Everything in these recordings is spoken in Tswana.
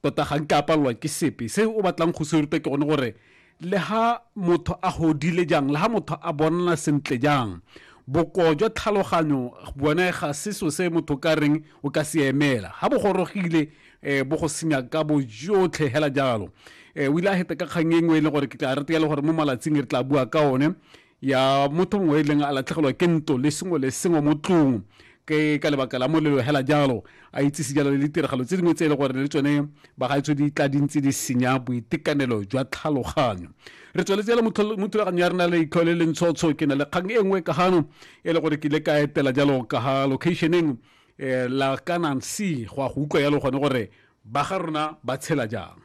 tota ga nke a palelwa ke sepe se o batlang go se ruta ke gone gore le ha motho a godile jang le ha motho a bonala sentle jang bokoo jwa tlhaloganyo bone ga se so se motho ka reng o ka se emela ga bo gorogile um bo go senya ka bojotlhe hela jalo um o ile a heta ka kgang e nngwe e leng gore ke tla re teyale gore mo malatsing re tla bua ka one ya motho mongwe e leng a latlhegelwa ke nto le sengwe le sengwe mo tlong ke ka lebaka la molelo hela jalo a itsise jalo le ditiragalo tse dingwe tse e le gore le tsone bagaetso di tla dintse di senya boitekanelo jwa tlhaloganyo re tsweletse jalo mo thulaganyo ya rena le itlho le lentshotsho ke na le kgang e nngwe ka gano e le gore ke ile ka etela jalo ka ga locationeng um la kanang c go ya go utlwa jalo gone gore ba ga rona ba tshela jang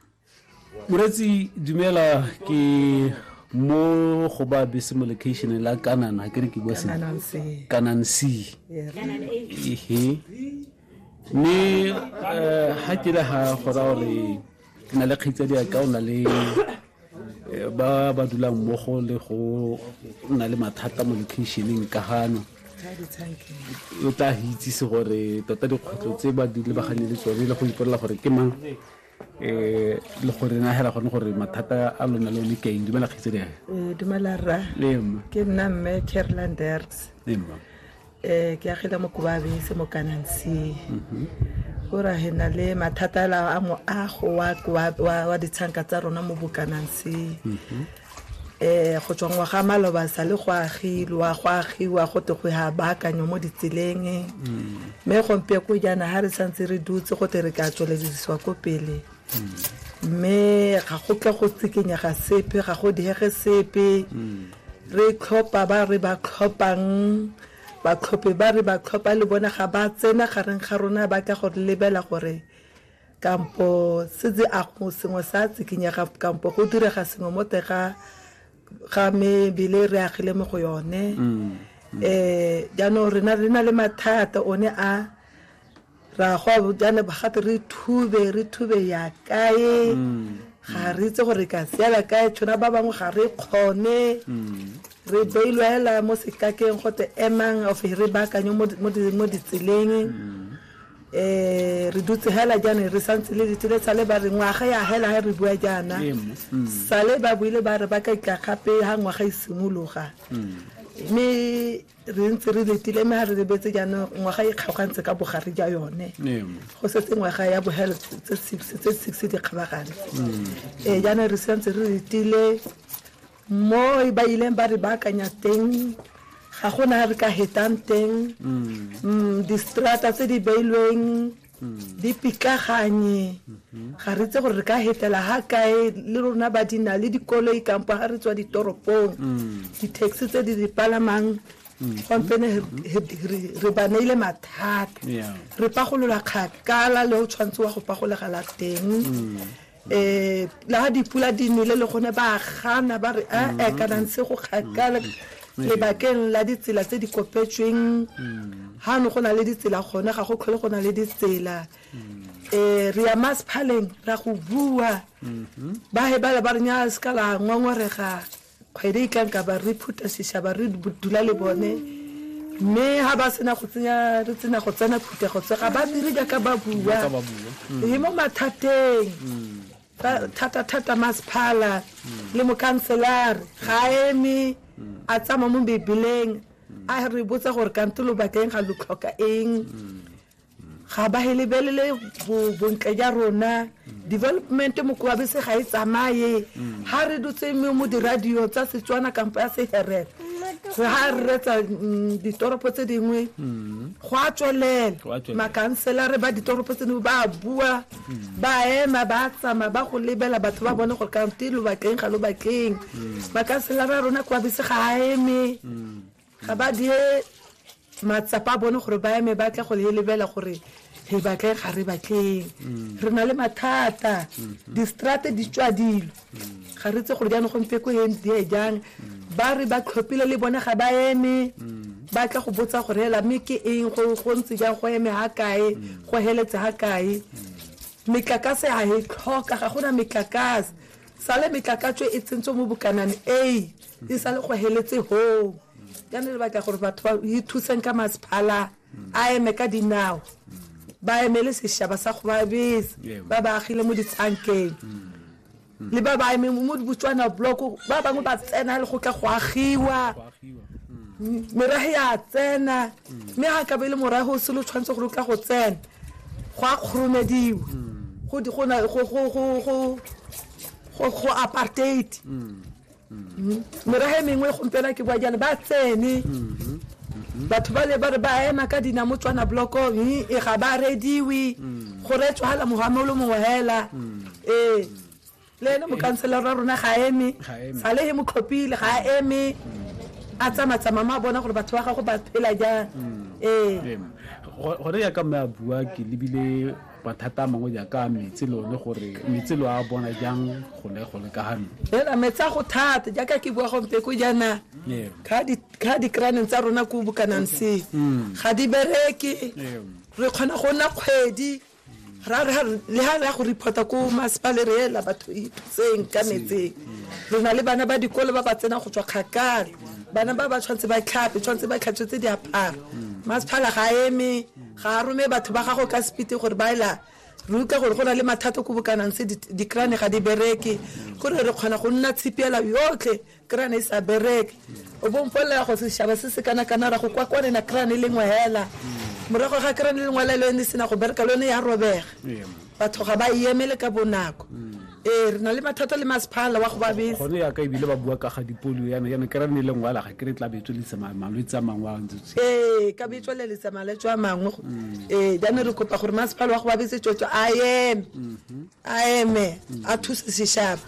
moretsi dumela ke mo go ba bese mo location la kanana ke re ke bua sentle kanan c ehe mme eh, ha ke le ha gora gore ke na le kgaitsadi ya ka o na le eh, ba ba dulang mmogo le go na le mathata mo locationeng ka gano o tla itsise gore tota dikgwetlho tse ba di lebagane le tsone le go ipolela gore ke mang eh le gore na hela gone gore mathata a lona le one ke eng dumela kgetse le Eh, dumela rra le mma ke nna mme carolin derks le mma um ke agile mo kobabese mo kanansi kora he na le mathata ala a moago wa koa- wa wa ditshanka tsa rona mo bokanansi go tswa ngwaga a maloba sa le go agilwa go agiwa go te go ya baakanywa mo ditseleng mme gompie ko jaana ga re santse re dutse go te re ka tsweledisiwa ko pele mme ga go tle go tsikinyega sepe ga go diege sepe re tlhopha ba re ba tlhophang batlhophi ba re ba tlhopha le bone ga ba tsena gareng ga rona ba tla go lebela gore kampo se tse a go sengwe sa tsikinyega kampo go direga sengwe mo teng ga ga mebele re agile mo go yone um jaanong rena re na le mathata one a ra go jaana gate re thube re thube ya kae ga re itse gore ka seela kae tshwana ba bangwe ga re kgone re beilwela mo sekakeng gote emang of re baakanye mo ditseleng um re dutse hela jaanong re santse le letile sale ba re ngwaga ya hela ga re bua jaana mm. sale ba buile ba re ba ka itla gape ga ngwaga e simologa mm. mme re ntse re letile mme ga re lebetse jaanong ngwaga e kgaogantse ka bogare ja yone go setse ngwaga ya bohelo tse six di kgabagane um mm. eh, jaanong re santse re letile Mo ba ileng ba re baakanya teng ga go na re ka hetang teng mm, distrata tse di beilweng di pitlaganye ga re itse gore re ka hetela ha kae le rona ba di na le dikoloi kampo ga re tswa ditoropong di-taxi tse di di palamang gompene re ba neile mathata Yeah. re pagolola kgakala le o tshwanetse wa go pagolegela teng um le ga dipula di nele le gone ba gana ba re ee mm-hmm. kana ntse go kgakala mm-hmm. lebakeng la ditsela tse di kopetsweng ga mm-hmm. no go na le ditsela gone ga go tlhole go na le ditsela um re ya masphaleng ra go bua ba he bale ba re nya se ka la ngwangwarega Kgwedi e tla nka ba re phutha seshaba re dula le bone mme ha ba sena go tsenya re tsena go tsena phuthego tse ga ba dire jaaka ba bua e mo mathateng thata-thata masephala le mokhanselare ga eme a tsamaya mo bebeleng a re botsa gore kante lo bakeng ga lo tlhoka eng ga ba he lebelele bo- bontle ja rona development mokoabese ga e tsamaye ga re dutse mo mo diradio tsa setswana kampo ya seherere go ga re retsa mm, ditoropo tse dingwe go a tswelela Go a tswelela. makanselare ba ditoropo tse dingwe ba bua ba ema ba tsamaya ba go lebela batho ba bone gore kante lo bakeng ga lo bakeng makanselare a rona koabese ga a eme ga ba die matsapa a bone gore ba eme ba tle go le lebela gore re batle ga re batleng mm. re na le mathata mm-hmm. distrate di tswa dilo mm. ga re tse gore jaanong gompe ko eng die jang mm. ba re ba tlhophile le bone ga ba eme ba tla go botsa gore hela mme ke eng go ntse jang go eme ga kae go heletse ga kae metlakase ga e tlhoka ga gona metlakase sale metlakatso e tsentswe mo bokanane a e sa le go heletse hoo ya ne lebaka gore batho ba ithuseng ka masephala a eme ka dinao ba emele sešaba sa go ba bese Ewa. ba ba agile mo ditsankeng le ba ba eme mo dibotswana bloko ba bangwe ba tsena le go tla go agiwa merahe ya tsena mme ga ka be le morahe o selo tshwanetse gore o tla go tsena go a kgoromediwa go di- go na- go- go- go- go- go- go apartheid meraga e mengwe gompiela ke bua jalo ba tsene batho ba le ba re ba ema ka dina mo tswana bloko e ga ba rediwe go retswa hala mohame o le mongwe hela ee le ene mokanselara wa rona ga eme Ga eme. sale e mo tlhophile ga eme a tsamatsama mo a bona gore batho ba gago ba phela jang ee Em, go- gone ya ka mme a bua ke lebile mathata a mangwe jaaka metsi le one gore metsi lo a bona jang gone gone ka gano fela metsi a go thata jaaka ke bua gompe ko jaana ga dikraneng tsa rona ko bokanang se mm. ga di bereke re kgona go nna kgwedi le ha re ya go reporta ko masepale re ela batho itseng ka metseng mm. re na le bana ba dikolo ba ba tsenang go tswa kgakala bana ba ba tshwanetse ba tlhape tshwanetse ba tlhatswetse diaparo mm. masephala ga eme Ga a rome batho ba gagwe ka sepiti gore ba ela re utlwa gore go na le mathata ko bokanang se dikrane ga di bereke gore re kgona go nna tshipiela yotlhe krane e sa bereke o bo mpolelela go setšhaba se se kana kana ra go kwa kwane na krane e lengwe hela morago ga krane e lengwe hela le yone e sena go bereka le yone ya robega batho ga ba emele ka bonako ee re na le mathata le masephala wa go ba bese gone yaka ebile ba bua ka ga dipolio yana yana ke ra ne le ngwala ga ke re tla betswe le tsema malwetse a mangwe a ntse ee ka betswe le letsa malwetse a mangwe mm. ee jane re kopa gore masepala wa go ba bese tswetswe a eme mm-hmm. a eme mm. a thuse seshaba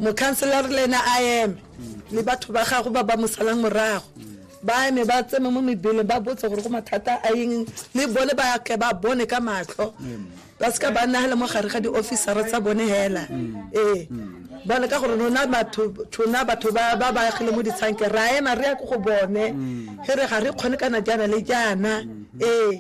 mokhanselara le ena a eme mm. le batho ba gago ba ba mosalang morago ba eme ba tseme mo mebeleng ba botse gore go mathata a eng mme bone ba tle ba bone ka matlho ba seka ba nagela mo gare ga di-officera tsa bone hela ee bone ka gore rona batho tona batho ba ba baagile mo ditshanke ra ema re ya ko go bone e re ga re kgone kana jaana le jaana ee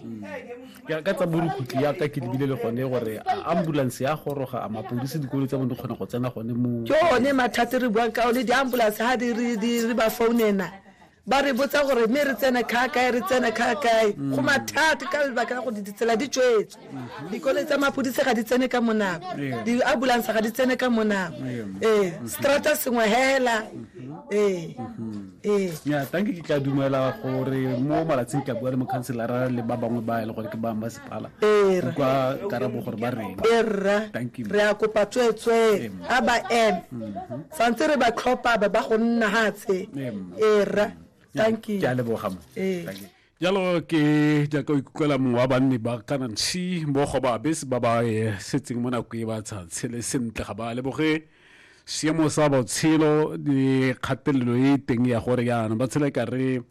ya ka tsa borukutlhi ya ka ke lebile le gone gore ambulance ya goroga a mapodisi dikolo tsa bone di kgona go tsena gone mo ke one mathate re buang ka one di-ambulance ga di re ba founena ba re botsa gore mme re tsene kga kae re tsene kga kae mm. go mathate ka lebaka la gore ditsela di tswetswe mm-hmm. dikole tsa mapodisi ga di tsene ka monako di-ambulance ga di tsene ka monako ee strata sengwe hela mm-hmm. ee mm-hmm. ya tanke ke tla dumela gore mo malatsing ke a bua le mokhanselara le ba bangwe ba e le gore ke ba masepala kwa karabo gore ba reng erra re a kopa tsweetswee a ba eme mhm. santse re ba tlhopha ba ba go nna hatshe erra thank you ke a leboga mo jalo ke jaaka o ikutlwela mongwe wa banni ba kana nshi mo go ba bese ba ba eh, setseng mo nako e ba sa tshele sentle ga ba leboge seemo sa botshelo le kgatelelo e teng ya gore yana ba tshela e ka re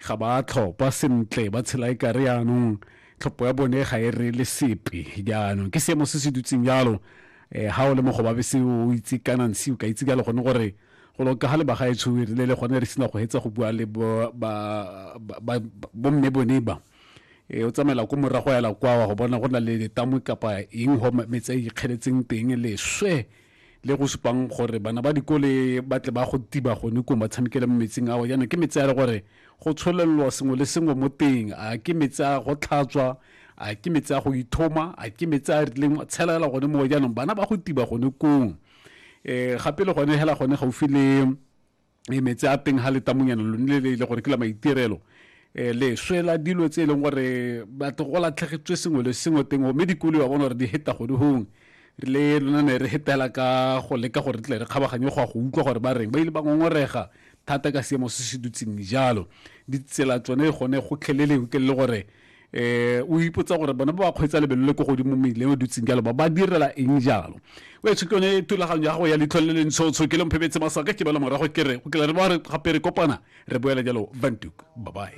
ga ba tlhopha sentle ba tshela e ka re yanong tlhopho ya bone ga e re le sepe jaanong ke seemo se se dutseng jalo um ga o le mo go ba bese o itse kana nshi o ka itse jalo gone gore go loka ga le bagaetsho re le le gone re sena go hetsa go bua le bomme bone ba e o tsamaela ko morago ya lakwawa go bona go na le letamo kapa eng go metsa e ikgeletseng teng leswe le go supang gore bana ba dikole ba tle ba go tiba gone ko ba tshamekele mo metsing ao jaanong ke metsi a le gore go tsholelelwa sengwe le sengwe mo teng a ke metsi a go tlhatswa a ke metsi a go ithoma a ke metsi a rileng tshelela gone mo jaanong bana ba go tiba gone kong eh gape le gone hela gone gaufi le eh, metsi a teng ha le tamonyana lo nile le gore ke la maitirelo eh le swela dilo tse e leng gore batho go latlhegetswe sengwe le sengwe teng mme dikolo ba bona gore di heta gone gongwe le lona ne re hetela ka go leka gore tle re kgabaganye go ya go utlwa gore ba reng ba ile ba ngongorega thata ka seemo se se dutseng jalo ditsela tsone gone go tlheleleng ke le gore eh o ipotsa gore bona ba ba kgweetsa lebelo le ko godimo meileng o dutseng jalo ba ba direla eng jalo o etsho ke yone thulaganyo ya gago ya leitlho le le ntshotsho ke le mphebetse masaka ke bala morago ke re go kela re ba re gape re kopana re boela jalo bantuk bye bye